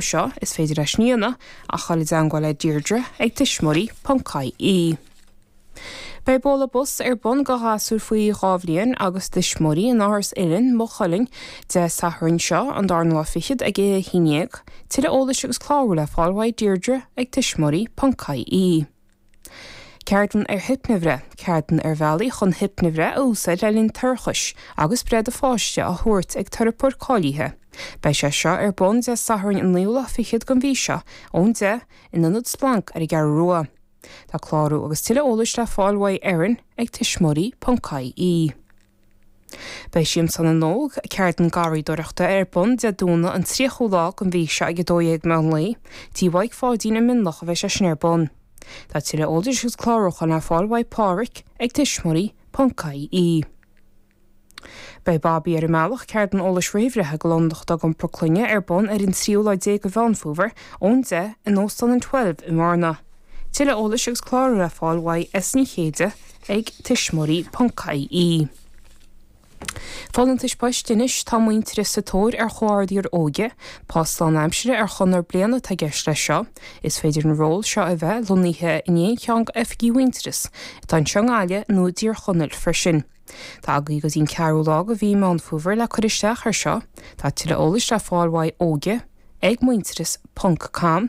seo, is féidir libh a dhul i dteangmháil le Deirdre ag tuismitheoirí.ie. Beidh bualadh bos ar bun go ghasúir faoi dhá bhliain agus a dtuismitheoirí in Áras Uilinn, Maigh Cuilinn, Dé Sathairn seo, an darna lá fichead ag a 11. Tuilleadh eolais agus clárú le fáil ag Deirdre ag tuismitheoirí.ie. Ceardlann ar Hipnea-bhreith, Ceardlann ar bhealaí chun hipnea-bhreith a úsáid le linn toirchis agus breith do pháiste á tabhairt ag teiripeoir cáilithe. Beidh sé seo ar bun Dé Sathairn an 9ú lá fichead den mhí seo ón 10:00 in Ionad Splanc ar an gCeathrú Rua. Tá clárú agus tuilleadh eolais le fáil uaidh Erin ag tuismitheoirí.ie. Beidh Siamsa na nÓg, ceardlann garraíodóireachta, ar bun Dé Domhnaigh an 30ú lá den mhí seo ag 12:00 meán lae, tí Mhaidhc Pháidín i Mionloch a bheidh sé sin ar bun. Tá tuilleadh eolais agus clárúcháin le fáil uaidh Pádraic ag tuismitheoirí ponc IE. Beidh Babaí ar an mBealach, ceardlann eolais réamhbhreithe go lánúin atá ag iompar clainne, ar bun ar an tríú lá déag de Mheán Fómhair, ón deich, in Óstán an Twelve i mBearna. Tuilleadh eolais agus clárú le fáil uaidh S Ní Chéide ag tuismitheoirí ponc ie Folúntais Poist Anois tá Muintearas sa tóir ar Chomhordaitheoir Óige. Post lánaimseartha ar chonradh bliana atá i gceist leis seo. Is féidir an ról seo a bheith lonnaithe in aon cheann d'oifigí Mhuintearas atá i dTír an Fhia nó i dTír Chonaill freisin. Tá agaí go dtí an 4ú lá de mhí Meán Fómhair le cur isteach ar seo. Tá tuilleadh eolais le fáil uaidh Óige ag muintearas ponc com.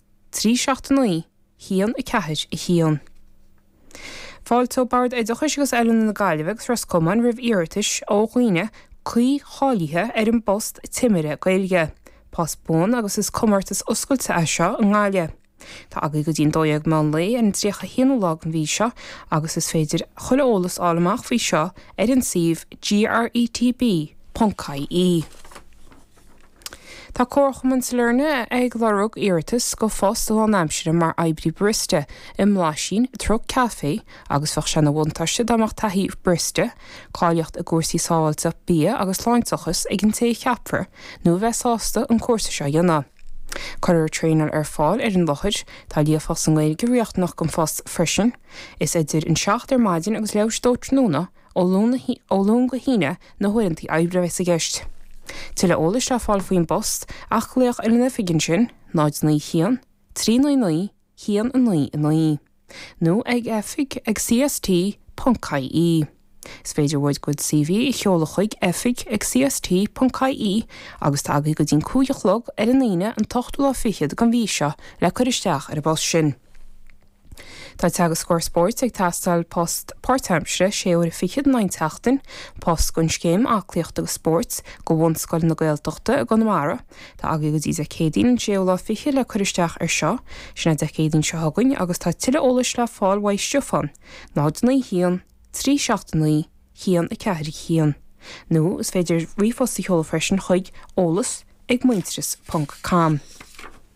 3 7 9 1 4 1. Fáilteoidh Bord Oideachais agus Oiliúna na Gaillimhe agus Ros Comáin roimh iarratais ó dhaoine cuí cháilithe ar an bpost Timire Gaeilge. Post buan agus is comórtas oscailte é seo i nGaillimh. Tá agaí go dtí an 12:00 meán lae ar an 31ú lá den mhí seo agus is féidir chuile eolas fháil amach faoi seo ar an suíomh gretb.ie. Tá Comharchumann Sailearna ag lorg iarratas go phost lánaimseartha mar oibrí barista i mBlaisín Truc Caifé agus bheadh sé ina bhuntáiste dá mbeadh taithí barista, cáilíocht i gcúrsaí sábháilteacht bia agus sláinteachas ag an té a cheapfar nó a bheith sásta an cúrsa seo a dhéanamh. Cuirfear traenáil ar fáil ar an láthair. Tá líofacht sa nGaeilge riachtanach don phost freisin. Is idir 7 ar maidin agus leath i ndiaidh a dó tráthnóna a Ó Luan go hAoine na huaireantaí oibre a bheas i gceist. Tuilleadh eolais le fáil faoin bpost ach glaoch ar an oifig ansin, 091 399 199, nó ag oifig ag CST ponc IE. Is féidir do CV a sheoladh chuig, oifig ag CST ponc IE, agus tá agaí go dtí'n cúig a chlog ar an Aoine an t-ochtú lá fichead den mhí seo le cur isteach ar an bpost sin. Tá Teagascóir Spóirt ag teastáil, post páirtaimseartha, sé uair a fichead in aon tseachtain, post don Scéim Aclaíochta agus Spóirt, go Bhunscoil na Gaeltachta i gConamara. Tá agaibh go dtí Dé Céadaoin an séú lá fichead le cur isteach ar seo. Sin é Dé Céadaoin seo chugainn agus tá tuilleadh eolais le fáil uaidh Stiofán, 0 9 1 3 7 9 1 4 1, nó is féidir ríomhphost a sheoladh freisin chuig, eolas ag muintearas ponc com.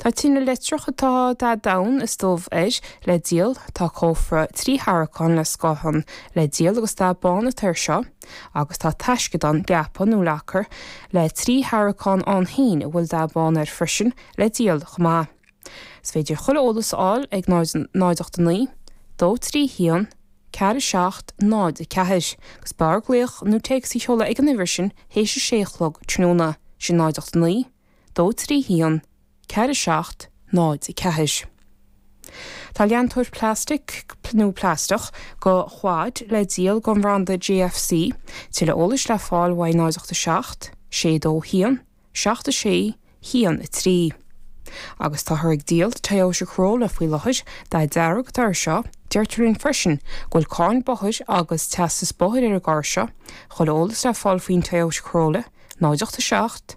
Tá tine leictreach atá dath donn is dubh air le díol, tá cófra trí tharraiceán le scátháin le díol agus dath bán atá air seo, agus tá taisceadán, gafa nó locker, le trí tharraiceán ann féin a bhfuil dath bán air freisin le díol chomh maith. Is féidir chuile eolas a fháil ag 0 89 231 4704 agus b'fhearr glaoch nó téacs a sheoladh ag an uimhir sin théis a sé a chlog tráthnóna, sin 089 dó trí haon, ceathair a seacht, náid a ceathair. Tá leantóir plastic nó plastach go Quad le díol go an bhranda JFC, tuilleadh eolais le fáil uaidh 087 62 1 76 1 3. Agus táthar ag díol Toyota Corolla faoi láthair, dath dearg atá ar seo, deirtear linn freisin go bhfuil cáin bóthair agus teastas bóthair ar an gcarr seo, chuile eolas le fáil faoin Toyota Corolla, 087.